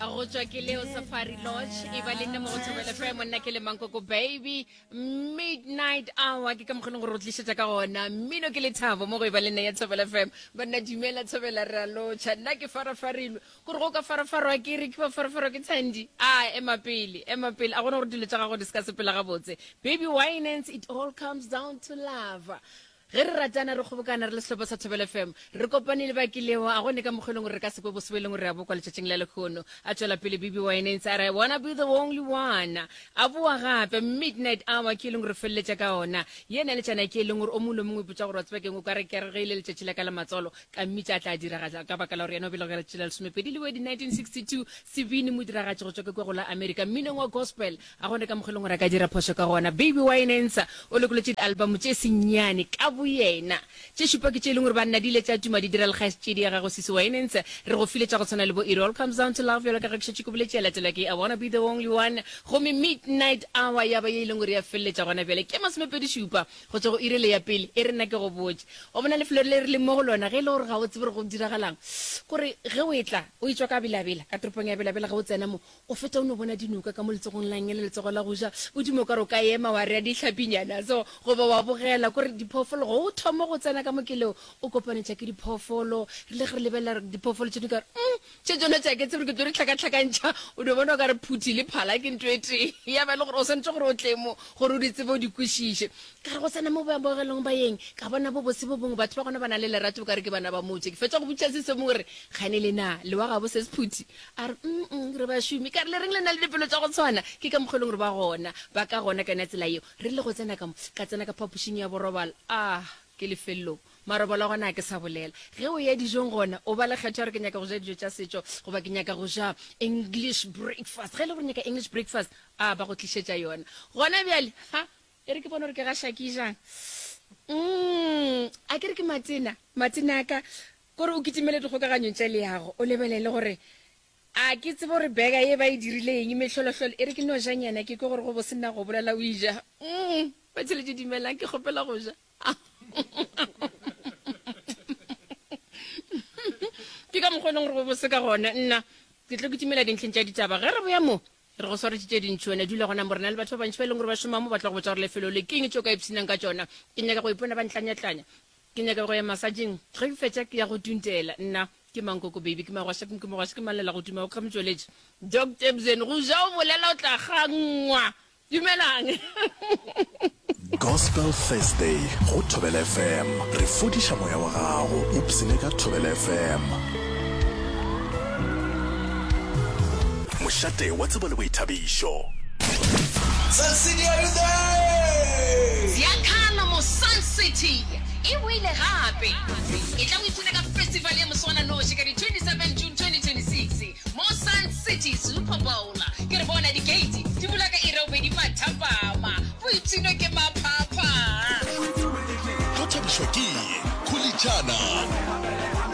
a go tswa ke leo safari lodge e ba le nne mo go thobele fe monna ke le mankoko baby midnight hour ke ka mokgone gore o tlišetsa ka gona mmino ke lethabo mo go e ba le nne ya thobele fm banna dumela thobela re a lotšha nna ke farafarilwe kore go ka farafarwa ke re ke ba farafarwa ke thandi a ema pele ema pele a gona gore dilo tsa gago di se ka sepela gabotse baby why nance it all comes down to love Ge re ratana, re kgobokana, re le sehlopa sa Thobela FM, re kopane le ba kilego, a gone ka mokgwa e leng gore re ka se kwe bosebo e leng re a bo kwa letšatšing la lekgono. A tšwela pele Bibi Wynants a re, I wanna be the only one. A boa gape, Midnight Hour ke e leng gore re feleletša ka ona. Ye na le tšana ke e leng gore o mongwe le o mongwe o ipotša gore wa tseba keng, o ka re ke re ge e le letšatši la ka la matswalo, ka mmitša a tla diragatša ka baka la gore yena o belegwe ka letšatši la lesomepedi Lwedi 1962, sebini modiragatši go tšwa ke kwe go la America. Mminong wa gospel, A gona ka mokgwa e leng gore a ka dira phošo ka gona. Baby Wynensa o lokolotše dialbamo tše senyane ka boyena. Tše šupa ke tše e leng gore ba nna di ile tša tuma di dira le kgaetšedi ya gagwe Sisi Wynensa. Re go file tša go tshwana le bo It All Comes Down to Love bjalo ka ge ke šetše ke boletše, ya latelwa ke I Wanna Be the Only One gomme Midnight Hour ya ba ye e leng gore ya feleletša gona bjale ke masomepedi šupa go tšwa go iri le ya pele. E re nna ke go botše, o bona lefelo le re leng mo go lona ge e le gore ga o tsebe gore go diragalang, gore ge o etla o e tšwa ka Bela-Bela, ka toropong ya Bela-Bela ge o tsena mo, O feta o no bona dinoka ka mo letsogong la nge le letsogo la go ja, o dimo ka re o ka ema wa rea dihlapinyana so, goba wa bogela ko re diphoofolo go o thoma go tsena ka mo keleo, o kopanetša ke diphoofolo, rile ge re lebelela re diphoofolo tše dingwe ka re umm tše tšona tša ke tsebe ke tlo di hlakahlakantšha, o no bona o ka re phuthi le phala ke nto e tee, ya ba e le gore o swanetše gore o tle mo gore o di tsebe o di kwešiše. Ka re go tsena mo boamogelong ba yeng, ka bona bobose bo bongwe, batho ba gona ba na le lerato o ka re ke bana ba motse, ke fetša go botšiša Sesomi gore kgane le na le wa gabo ses phuthi? A re, Mm-mm, re bašomi. Ka re, Le reng le na le dipelo tša go tshwana? Ke ka mokgwa e leng gore ba gona. Ba ka gona ka yona tsela yeo. Re rile go tsena ka mo, ka tsena ka phapošing ya borobalo. Ah, ke lefelelong. Marobalo a gona ga ke sa bolela. Ge o eya dijong gona, o ba le kgetho ya gore ke nyaka go ja dijo tša setšo goba ke nyaka go ja English breakfast. Ge e le gore o nyaka English breakfast, ah, ba go tlišetša yona. Gona bjale, ha, e re ke bone gore ke ga Shaki jang. Mm, a ke re ke matena, matena a ka, Gore o kitimele dikgokaganyong tša leago, o lebelele gore, A ke tsebe gore bega ye ba e dirile eng? Mehlolohlolo e re ke nojanyana. Ke kwe gore go bose na go bolela o e ja. Umm! Batheletše, dumelang, ke kgopela go ja. Ke ka mokgwa e leng gore go bose ka gona. Nna, ke tlo kitimela dintlheng tša ditaba. Ge re boya mo, re go swaretše tše dintši. Wena dula gona mo. Re na le batho ba bantši ba e leng gore ba šoma mo, ba tla go botša gore lefelo le ke eng, tšeo ka ipshinang ka tšona. Ke nyaka go ipona ba ntlanyatlanya. Ke nyaka go ya masajeng. Ge ke fetša ke ya go tuntela. Nna, Ke mang koko baby? Ke magwasha ke mogwasha ke mang lela go tuma o kga motšweletši? Doc Tebzen, Go ja o bolela o tla kgangwa. Dumelang. Gospel Thursday go Thobela FM, re fodiša moya wa gago, ipsene ka Thobela FM. Mošate wa tsebo le boithabišo. Bjalo mo Sun City e boile gape. Etla o ipshine ka festival ya moswananoši ka di 27 June 2026 mo Sun City Super Bowl. Ke re bona di gate di bula ka iri ya bobedi mathapama. Boipshino ke maphapha. Go thabišwa ke kholitšana.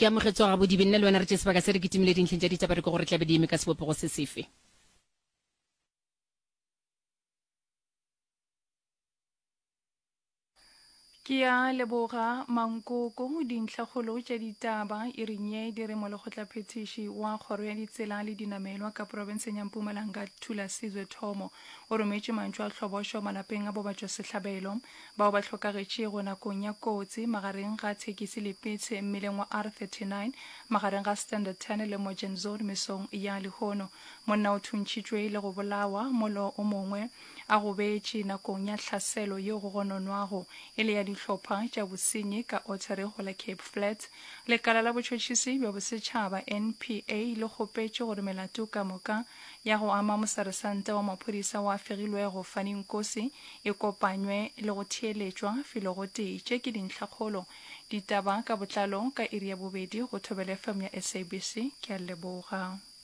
ke amogetswa gabodibe nna le wena re tše sebaka se re kitimile dintlheng tša ditaba re ke gore tlabe di eme ka sebopego se sefe Ke a leboga Mankoko. Dintlhakgolo tša ditaba e re nye di re molekgotlaphethiši wa kgoro ya ditsela le dinamelwa ka profenseng ya Mpumalanga Thulasizwe Thomo o rometše mantšu a tlhobošo malapeng a bobatšwasehlabelo bao ba hlokagetšego nakong ya kotsi magareng ga thekisi le pitshe mmileng wa R39 magareng ga Standard 10 le Mojenzoot mesong ya lehono. Monna o thuntšhitšwe le go bolawa, molo o mongwe a gobetše nakong ya hlaselo yeo go gononwago e le ya dihlopha tša bosenyi ka Ottery go la Cape Flats, lekala la botšhotšhisi bja bosetšhaba, NPA, le kgopetše gore melato ka moka ya go ama moseresanta wa maphodisa wa fegilwego Fanny Nkosi e kopanywe le go theeletšwa filogotee. Tše ke dintlhakgolo. Ditaba ka botlalo ka iri ya bobedi go Thobela FM ya SABC. Ke a leboga.